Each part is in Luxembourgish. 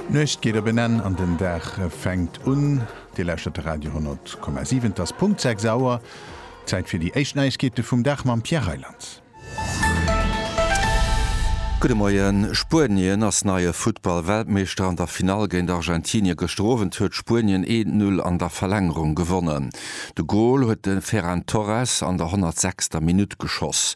D'Nuecht geet op en Enn an den Dag fänkt un. Dir lauschtert de Radio 10,7. Et ass Punkt 6 Auer. Zäit fir déi éischt Neiegkeete vum Dag mam Pierre Reyland. Gudde Moien. Spuenien ass neie Futtball-Weltmeeschter. An der Finall géint Argentinie gëschter Owend huet Spuenien een Null an der Verlängerung gewonnen. De Gol huet de Ferran Torres an der 106. Minutt geschoss.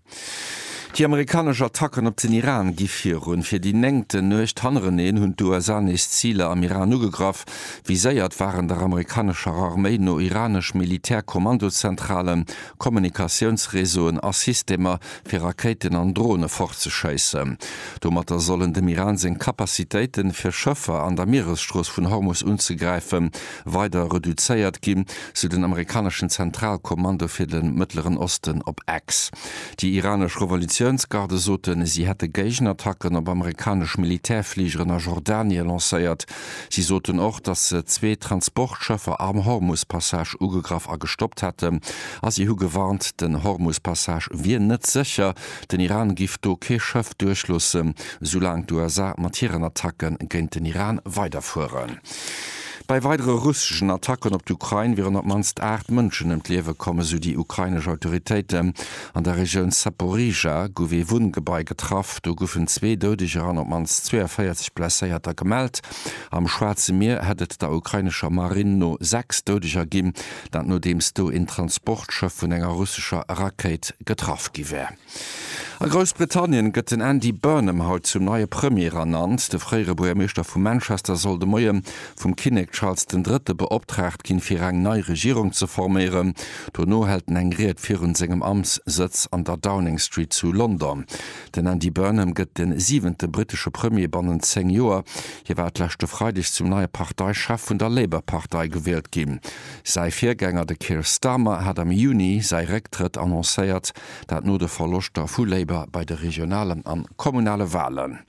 Déi amerikanesch Attacken op den Iran gi virun. Fir déi néngten Nuecht hannereneen hunn d'USA nees Ziler am Iran ugegraff. Viséiert waren der amerikanescher Arméi no iranesch Militär-Kommandozentralen, Kommunikatiounsreseauen a Systemer, fir Rakéiten an Drone fortzeschéissen. Domatter sollen dem Iran seng Capacitéiten, fir Schëffer an der Mieresstrooss vun Hormus unzegräifen, weider reduzéiert ginn, sou den amerikaneschen Zentralkommando fir de Mëttleren Osten op X. Déi iranesch Revolutiounsgarde soten, si hätte Géigenattacken op amerikanesch Militärfligeren a Jordanie lancéiert. Si soten och, datt se zwee Transportschëffer am Hormus-Passage ugegraff a gestoppt hätten. A si hu gewarnt, den Hormus-Passage wier net sécher, den Iran giff do kee Schëff duerchloossen, soulaang d'USA mat hiren Attacke géint den Iran weiderfueren. Bei weidere russeschen Attacken op d'Ukrain wieren op d'mannst 8 Mënschen ëm d'Liewe komm, esou déi ukrainesch Autoritéiten. An der Regioun Zaporizhzhia gouf ee Wunngebai getraff. Do goufen zwee Doudeger an op d'mannst 42 Blesséierter gemellt. Am Schwaarze Mier hätt et der ukrainescher Marinn no 6 Doudeger ginn, dat nodeems do een Transportschëff vun enger russescher Rakéit getraff gi wär. A Groussbritannien gëtt den Andy Burnham haut zum neie Premier ernannt. De fréiere Buergermeeschter vu Manchester soll de Moie vum Kinnek Charles den Drëtte beoptraagt ginn, fir eng nei Regierung ze forméieren. Dono hält en eng Ried virun sengem Amtssëtz an der Downing Street zu London. Den Andy Burnham gëtt de siwente brittesche Premier bannent 10 Joer. Hie war d'leschte Freideg zum neie Parteichef vun der Labour-Partei gewielt ginn. Säi Virgänger, de Keir Starmer, hat am Juni säi Récktrëtt annoncéiert. Dat no de Verloschter vu Labour bei de regionalen an kommunale Walen.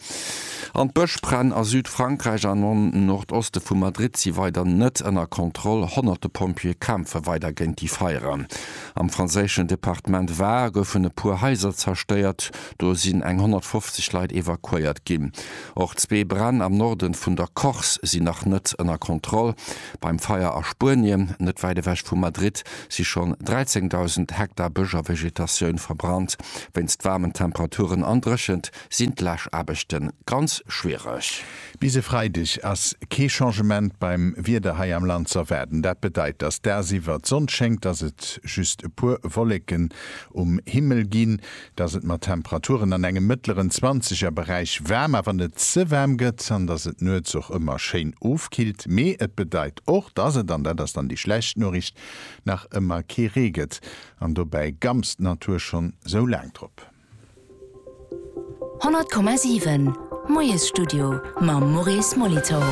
An d'Bëschbränn a Südfrankräich an am Nordoste vu Madrid si weider net ënner Kontroll. Honnerte Pompjeeë kämpfe weider géint déi Feieren. Am franséischen Departement Var goufen e puer Haiser zerstéiert. Do sinn eng 150 Leit evakuéiert ginn. Och zwee Bränn am Norde vun der Corse sinn nach net ënner Kontroll. Beim Feier a Spuenien, net wäit ewech vu Madrid, si schonn 13.000 Hektar Bësch a Vegetatioun verbrannt. Wéinst waarmen Temperaturen an Dréchent sinn d'Läschaarbechte ganz schwiereg. Bis e Freideg ass kee Changement beim Wieder hei am Land z'erwaarden. Dat bedeit, dass dagsiwwer d'Sonn schéngt, dass et just e puer Wolleken um Himmel ginn. dass et mat Temperaturen an engem mëttleren Zwanzegerberäich waarm, awer net ze waarm gëtt an dass et nuets och ëmmer schéin ofkillt. Mee et bedeit och, dass et, an dat ass dann déi schlecht Noriicht, nach ëmmer kee Ree gëtt. An dobäi gamst d'Natur schonn sou laang drop. 100 Komma 7, Moiesstudio mam Maurice Molitor.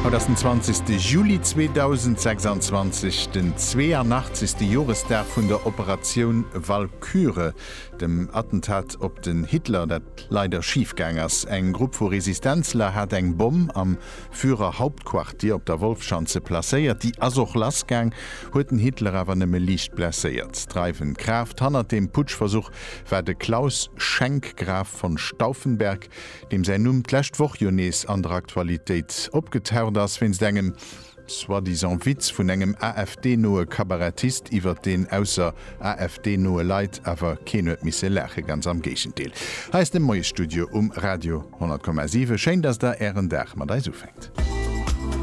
Haut ass den zwanzegste Juli 2026, den zweeënachtzegste Joresdag vun der Operatioun Val Kure, dem Attentat op den Hitler, dat leider schif gaang ass. Eng Grupp vu Resistenzler hat eng Bomm am Führerhauptquartier op der Wolfschanze placéiert. Déi ass och lass gaang, huet den Hitler awer nëmme liicht blesséiert. Dreiwend Kraaft hannert deem Putschversuch war de Claus Schenk, Graf von Stauffenberg, deem säin Numm d'lescht Woch jo nees an der Aktualitéit opgetaucht ass wéinst engem, soi-disant Witz vun engem AfD-noe Kabarettist iwwert deen ausser AfD-noe Leit awer keen huet misse laachen, ganz am Géigendeel. Hei ass de Moiesstudio um Radio 100,7. Schéin, dass der Ären Dag mat eis ufänkt.